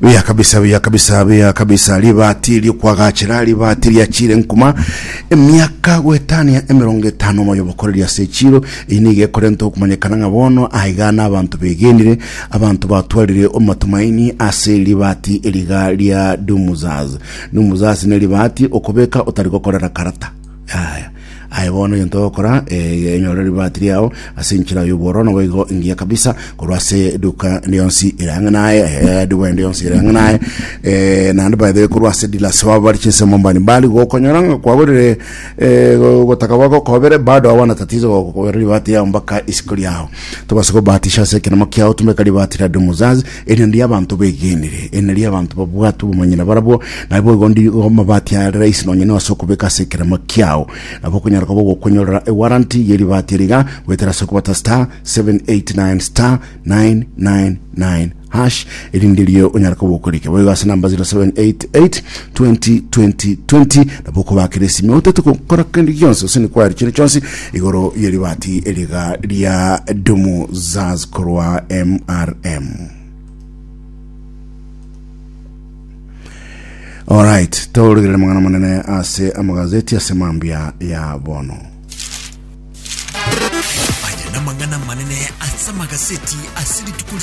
Buya kabisa, buya kabisa, buya kabisa. Ribaati ri'okwagachera, ribaati riachiire nkuma. Emiaka goetania emerongo etano moyo bokoreria ase echiiro. Eyi nigo ekorenta okomanyekana ng'a bono aigana abanto begenire, abanto batwarire omatumaini ase ribaati eriga ria Dumuzaz. Dumuzaz ne ribaati okobeka otari gokorera karata. Yaya. Aye bono egento ogokora, ee, enyore ribaati riao ase enchera y'obworo, naboigo engiya kabisa korwa ase eduka ende yonsi ere ang'e naye, ee, eduka ende yonsi ere ang'e naye, ee, naende by the way korwa ase dealers babo bare chinsemo mbari mbari, gokonyora ng'a kwagorire ee, go- gotaka gwako okobere, bado hawana tatizo gokobera ribaati riao mpaka isiko riao. Tobasa kobahatisha ase ekenemo kiao, tumeka ribaati ria Domu Zazi, Eriondi y'abanto begenire, eri nario y'abanto babwate obomanyene barabwo, naboigo ndigo amabati are rahisi nonya inwe ase okobeka ase ekerema kiao. Nabo okonyara koba ogokwenyorera ewaranti y'eribati eri iga, goetera ase okobata star, seven, eight, nine, star, nine, nine, nine, hash, erinde erio onyare koba okorike boigo ase number zero, seven, eight, eight, twenty, twenty, twenty, nabo okobakera esimi otaete gokora kende gionsi gose nikwayare chire chionsi Igoro ye ribati eriga ria Dumu Zaz korwa MRM. Alright, tauregerere mang'ana manene ase amagazeti ase mambia ya bono. Aya namang'ana manene ase amagaseti ase rituko